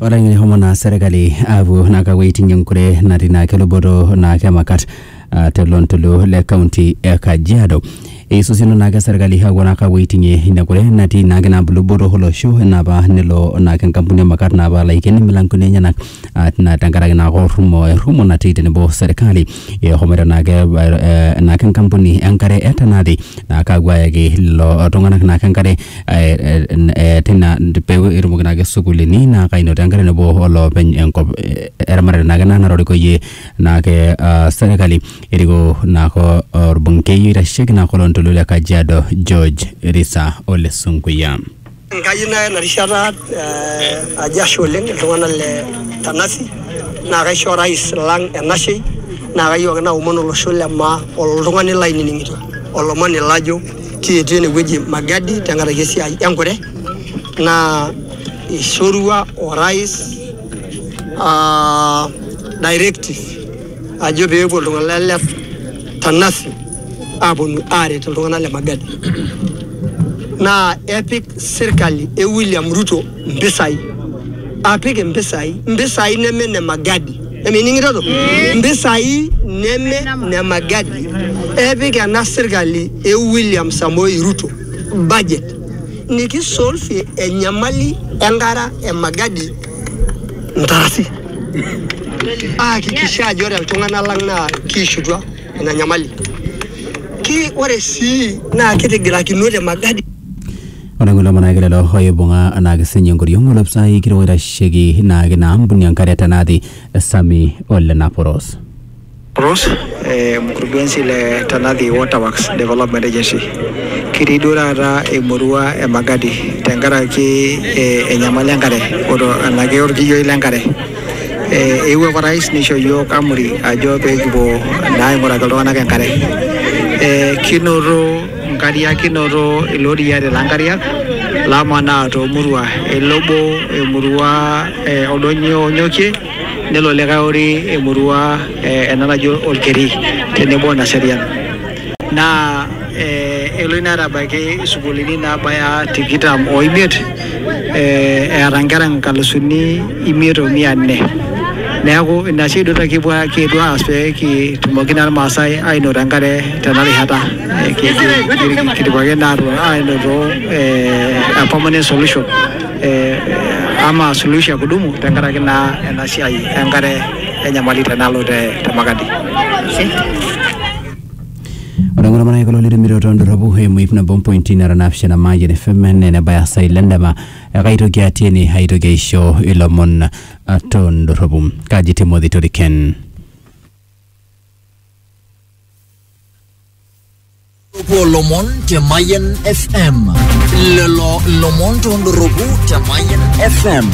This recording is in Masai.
ore ng'ini homo naa serkali aapuo naa kapuo aiting'ie enkure natii naa keluboto naa kemakat ah, tele ontoluo le kaunti e kajiado eisosino naake serkali aapuo naa kapuo aiting'ie ina kure natii naake naa luboto olosho enapa nelo naake enkampuni emakat naa apuo aiken imilankoni enyenak ah, tina tenkaraki naake orrumo errumo natii tenebo serkali ehomoito naake eh, naake enkampuni enkare e Tanati naa kaapuo ayaki lelo tung'anak naake enkare eh, eh, n- eh, tina pee etumoki naake sukuulini naa kainoto enkare nebo olopeny enkop eh, eramatare naake ena natorikoyie naake ah, serkali eriko naake orbungei oitasheki naake oloontoluo le Kajiado George Risa Ole Sunkuya. Kayieu naya ena rishata ajo ashe oleng iltung'anak le Tanasi naa kaisho orais lang enashei naa kayieu ake naomon olosho le maa oltung'ani lainining'ito olomoni lajo kietuo enewueji Magadi tenkaraki esiai enkure naa eishorua orais uh directive ajo peepuo iltung'anak le Tanasi. aponu aret iltung'anak le Magadi naa epik sirkali e William Ruto mpisai apik mpisai mpisai neme ne Magadi emining'itoto mpisai neme ne Magadi epik ena sirkali e William Samoei Ruto budget nikisolfie enyamali enkara e Magadi ntarasi aakikisha ajo ore iltung'anak lang naa kiishutua ina nyamali. Ki ore sii naa kitigirakinote Magadi Ore kulo manake lelo oibung'a anaake sinye enkoriong olopisai kitok oitasheki naake ina ampuni enkare te Nathi Sami Ole Naporos. Naporos, eh, mkurugenzi le Tanathi Waterworks Development Agency. Kitii duo taata emurua e Magadi tenkaraki eh, enyamali enkare oto enake orkiyioi lenkare. Eh, eewuo orais neisho iyiook amri ajo pee kipuo naa aing'uraki iltung'anak enkare. Eh, kinoto nkariak, kinoto iloriyia lelo nkariak lamanaa toomurua. Elo obo emurua e Oldonyio Onyokie, nelo likae ori emurua eh, ena naji Olkeri tenebo o Naserian. Naa eh, elo ina aitabaiki isukuulini naabaya tikitam oimiet. eh, eeta nkera nkalusuni imiet o mia nne neeku ina sii duo kipuo kiyetuo aas pee kitumoki naa irmaasai ainoto enkare tena rishata Eh, ki- ki- kidipa ake naa aatu- ainoto eh, a permanent solution eh, ama suluhisho ya kudumu tenkaraki naa ena siai enkare enyamali tenalo te te Makadi. Ore engoro mara kulo litumito too ndorropu eimu ip nabo mpointi nara naapishana Mayian FM naa enebaya saa ile endama ekaitoki atii ene aitoki aisho ilomon ah, too ndorropu. Kaji Timothy Toriken. Tupuo lomon te Mayian FM. Lelo lomon tondoropu te Mayian FM.